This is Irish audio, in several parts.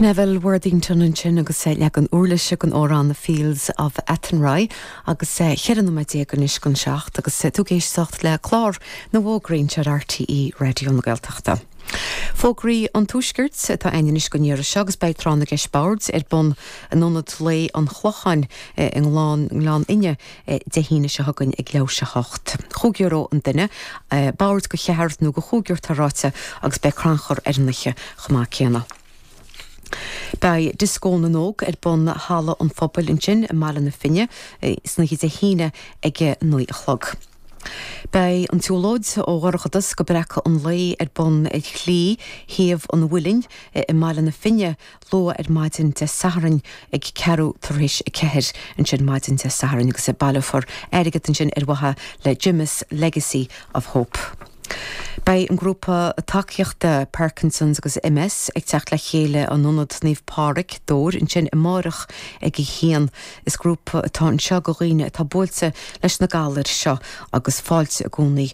Neville Worthington ansin agus leagan uirlise den amhrán 'The Fields of Athenry' agus 14 nóiméad anois chun seacht agus tú ag éisteacht le clár na bhfógraíocht ar RTÉ Raidió na Gaeltachta. Fógraí an Tuaiscirt atá ann anois don deireadh seo agus beidh Tráth na gCeist Boird ar bun in Ionad Lae an Chlocháin i nGleann Fhinne, Dé hAoine seo chugainn ag leath i ndiaidh a hocht. Chúig euro an duine. Boird de cheathrar nó de chúigear atá ráite agus beidh crannchur ar an oíche chomh maith céanna. Beidh Dioscó na nÓg ar bun i Halla an Phobail ansin i mBaile na Finne san oíche Dé hAoine ag a naoi a chlog. Beidh an tsiúlóid ó Dhorchadas go Breacadh an Lae ar bun ar Shlí Thaobh an Mhuilinn i mBaile na Finne luath ar maidin Dé Sathairn ag ceathrú tar éis a ceathair ansin maidin Dé Sathairn agus baileofar airgead ansin ar mhaithe le Gemma's Legacy of Hope. Beidh an grúpa tacaíochta Parkinson's agus MS ag teacht le chéile in Ionad Naomh Pádraig, Dobhair ansin amáireach ag a haon. Is grúpa atá anseo do dhaoine atá buailte leis na galair seo agus fáilte i gcónaí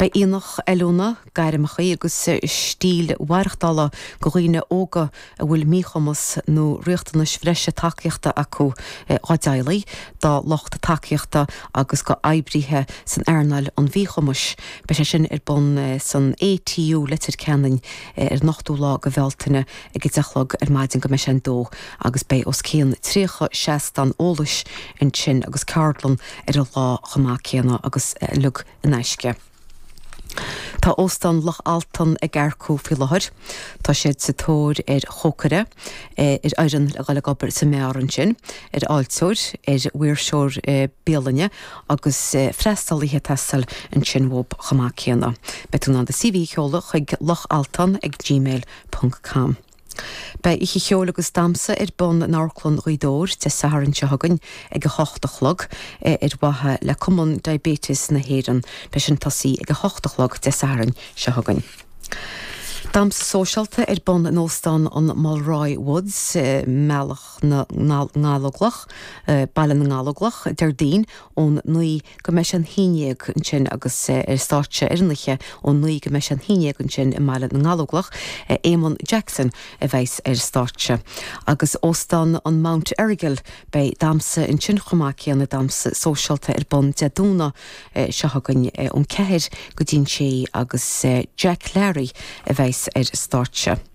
Beidh aonach oiliúna, gairmeacha agus stíl mhaireachtála do dhaoine óga a bhfuil míchumas nó riachtanais bhreise tacaíochta acu, dá dteaghlaigh, dá lucht tacaíochta agus do oibrithe san earnáil an mhíchumais. Beidh sé sin ar bun san ATU, Leitir Ceanainn ar an 8ú lá de Bhealtaine ag 10 a chlog ar maidin go mbeidh sé an dó agus beidh os cionn 30 seastán eolais ansin agus ceardlann ar an lá chomh maith céanna agus uilig in aisce. Tá Óstán Loch Altan ag earcú faoi láthair. Tá siad sa tóir ar chócaire, ar fhoireann le dul ag obair sa mbeár ansin, ar fháilteoir, ar mhaoirseoir bialainne agus freastalaithe taistil ansin chomh maith céanna. Beidh tú in ann do CV a sheoladh chuig lochaltan@gmail.com. Beidh oíche cheoil agus damsa ar bun in Amharclann Ghaoth Dobhair Dé Sathairn seo chugainn ag 8 a chlog, é ar mhaithe le Cumann Diabetes na hÉireann. Beidh sé sin ag tosú ag 8 a chlog Dé Sathairn seo chugainn. Damsa sóisialta ar bun in Óstán an Mulroy Woods i mBealach na nGallóglach, Baile na nGallóglach, Déardaoin, ón naoi go mbeidh sé an haon déag ansin agus ar stáitse ar an oíche ón naoi go mbeidh sé an haon déag ansin i mBaile na nGallóglach, Éamonn Jackson a bheas ar stáitse. Agus Óstán an Mount Errigal, beidh damsa ansin chomh maith céanna, damsa sóisialta ar bun Dé Domhnaigh seo chugainn ón ceathair go dtí an sé agus Jack Larry a bheas ar stáitse.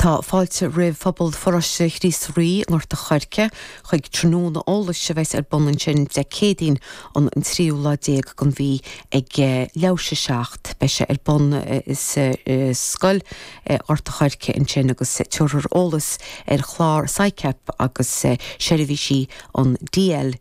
Tá fáilte roimh phobal Pharóiste Chríost Rí i nGort an Choirce chuig tráthnóna eolais a bheas ar bun ansin Dé Céadaoin an tríú lá déag den mhí ag leath i ndiaidh a seacht. Beidh sé ar bun sa scoil i nGort an Choirce ansin agus tabharfar eolas ar chlár Sicap agus seirbhísí an DLDC.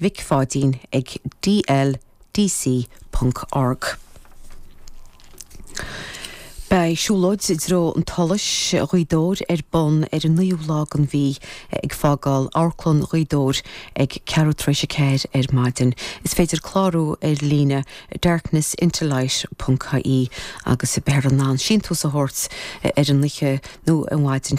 Mhic Pháidín ag dldc ponc org. Beidh siúlóid i dtreo an tSolais Ghaoth Dobhair ar bun ar an 9ú lá den mhí ag fágáil Amharclann Ghaoth Dobhair ag ceathrú tar éis a ceathair ar maidin. Is féidir clárú ar líne darknessintolight ponc ie agus beifear in ann síntiús a thabhairt ar an oíche nó an mhaidin